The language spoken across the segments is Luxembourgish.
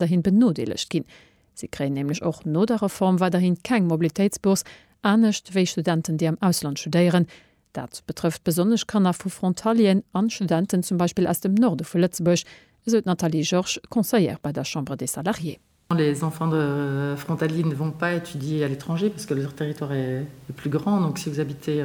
weiderhin benodeelegt ginn. Si kréien nämlech och no der Reform weiderhin keng Mobilitéitsbourse, anescht wéi Studenten, déi am Ausland studéieren. Dat betrëfft besonnesch Kanner vu Frontalieren an Studenten zum Beispill aus dem Norde vu Lëtzebuerg, esou d'Nathalie Georges, Conseillère bei der Chambre des Salariés. Les enfants de frontaliers ne vont pas étudier à l'étranger parce que leur territoire est plus grand, donc si vous habitez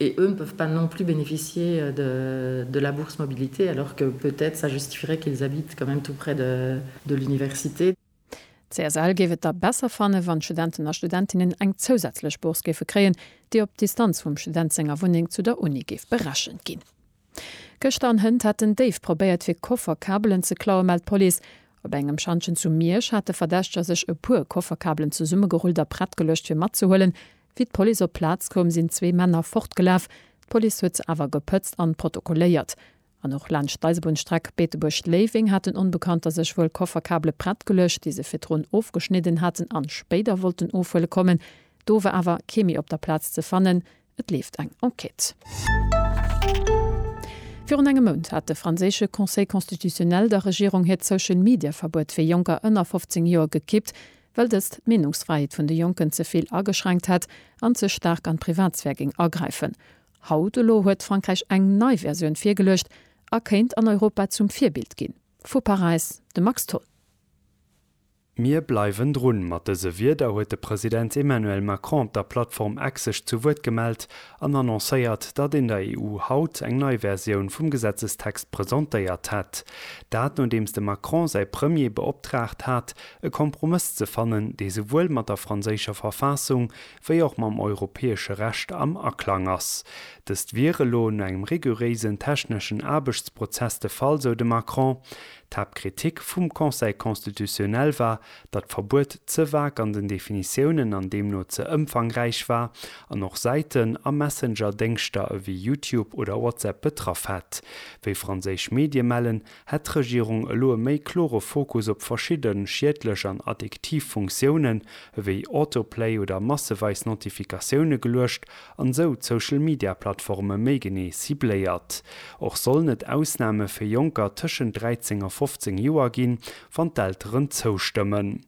et eux ne peuvent pas non plus bénéficier de la bourse mobilité alors que peut-être ça justifierait qu'ils habitent quand même tout près de l'université. D'CSL géif et da besser fannen, wann d'Studenten a Studentinnen eng zousätzlech Bourse géife kréien, déi op d'Distanz vum Student senger Wunneng zu der Uni géif berechent ginn. Gëschter an Hënt hätten déif probéiert fir Kofferkabelen ze klauen, mellt d'Police. Op engem Schantjen zu Miersch hate Verdächteger sech e puer Kofferkabelen zesummegerullt a prett geluecht fir matzehuelen, Wéi d'Police op d'Plaz koum, sinn zwee Männer fortgelaf. D'Police huet se awer gepëtzt an protokolléiert. An och laanscht d'Eisebunnstreck Beetebuerg-Léiweng hat den Onbekannter sech wuel Kofferkabele prett geluecht, déi se virdrun ofgeschnidden haten an spéider wollten ofhuele kommen. Do war awer kee méi op der Plaz ze fannen. Et leeft eng Enquête. Virun engem Mount hat de franséische Conseil constitutionnel der Regierung hiert Social-Media-Verbuet fir Jonker ënner 15 Joer gekippt. well dëst d'Meenungsfräiheet vun de Jonken ze vill ageschränkt hätt an ze staark an d'Privatsphär géing agräifen. Haut elo huet Frankräich eng nei Versioun virgeluecht a kéint an Europa zum Virbild ginn. Vu Paräis de Max Tholl. Mir bleiwen drun. Mat dëse Wierder huet de President Emmanuel Macron der Plattform X sech zu Wuert gemellt an annoncéiert, datt een der EU haut eng nei Versioun vum Gesetzestext presentéiert hätt. Dat nodeems de Macron säi Premier beoptraagt hat, e Kompromëss ze fannen, dee souwuel mat der franséischer Verfassung wéi och mam europäesche Recht am Aklang ass. Dëst wier elo no engem riguréisen techneschen Aarbechtsprozess de Fall, sou de Macron. D'Haaptkritik vum Conseil constitutionnel war, datt d'Verbuet ze vag an den Definitiounen an deemno ze ëmfangräich war an och Säiten a Messenger-Déngschter ewéi Youtube oder WhatsApp betraff hätt. Wéi franséisch Medie mellen, Hätt d'Regierung elo e méi klore Fokus op verschidde schiedlech an addiktiv Funktiounen, ewéi Autoplay oder masseweis Notifikatioune geluecht an esou d'Social Media Plattforme méi genee cibléiert. Och sollen et Ausname fir Jonker tëschent 13 a 15 Joer ginn, wann d'Elteren zoustëmmen.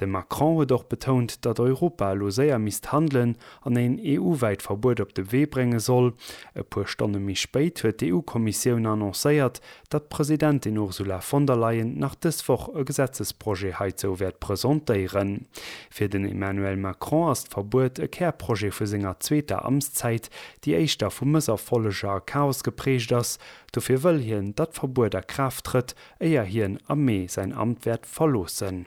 De Macron huet och betount, datt Europa elo séier misst handelen an een EU-wäit Verbuet op de Wee brénge soll. E puer Stonne méi spéit huet d'EU-Kommissioun annoncéiert, datt d'Presidentin Ursula von der Leyen nach dës Woch e Gesetzesprojet heizou wäert presentéieren. Fir den Emmanuel Macron ass d'Verbuet e Kärprojet vu senger zweeter Amtszäit, déi éischter vu Mësserfolleger a Chaos geprägt ass. Dofir wëll hien, datt d'Verbuet a Kraaft trëtt, éier hien am Mee säin Amt wäert verloossen.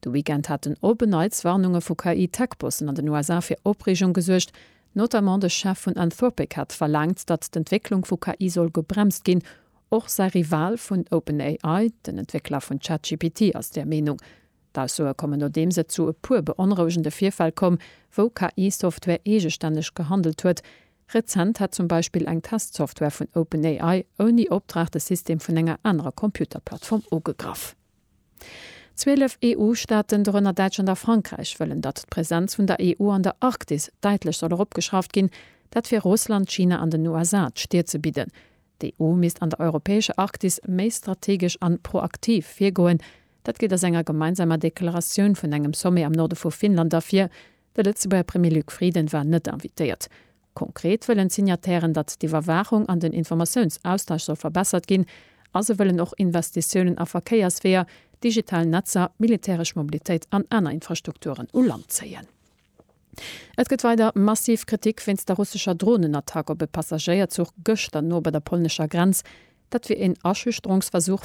De Weekend haten op e Neits Warnunge vu KI-Tech-Bossen an den USA fir Opreegung gesuergt. Notamment de Chef vun Anthropic hat verlaangt, datt d'Entwécklung vu KI soll gebremst ginn. Och säi Rival vun OpenAI, den Entwéckler vun ChatGPT, ass där Meenung. D'Aussoe kommen nodeems et zu e puer beonrouegende Virfäll koum, wou KI-Software eegestänneg gehandelt huet. Rezent hätt zum Beispill eng Test-Software vun OpenAI ouni Opdrag de System vun enger anerer Computer-Plattform ugegraff. Zwielef EU-Staaten, dorënner Däitschland a Frankräich, wëllen, datt d'Presenz vun der EU an der Arktis däitlech soll eropgeschrauft ginn. Dat fir Russland, China an den USA d'Stir ze bidden. D'EU misst an der europäescher Arktis méi strategesch an proaktiv virgoen. Dat geet aus enger gemeinsamer Deklaratioun vun engem Sommet am Norde vu Finnland ervir. De Lëtzebuerger Premier Luc Frieden war net invitéiert. Konkret wëllen d'Signatairen, datt d'Iwwerwaachung an den Informatiounsaustausch soll verbessert ginn a se wëllen och Investitiounen a Verkéiersweeër, digital Netzer, militäresch Mobilitéit an aner Infrastrukturen u Land zéien. Et gëtt weider massiv Kritik wéinst der russescher Dronenattack op e Passagéierzuch gëschter no bei der polnescher Grenz. Dat wier een Aschüchterungsversuch,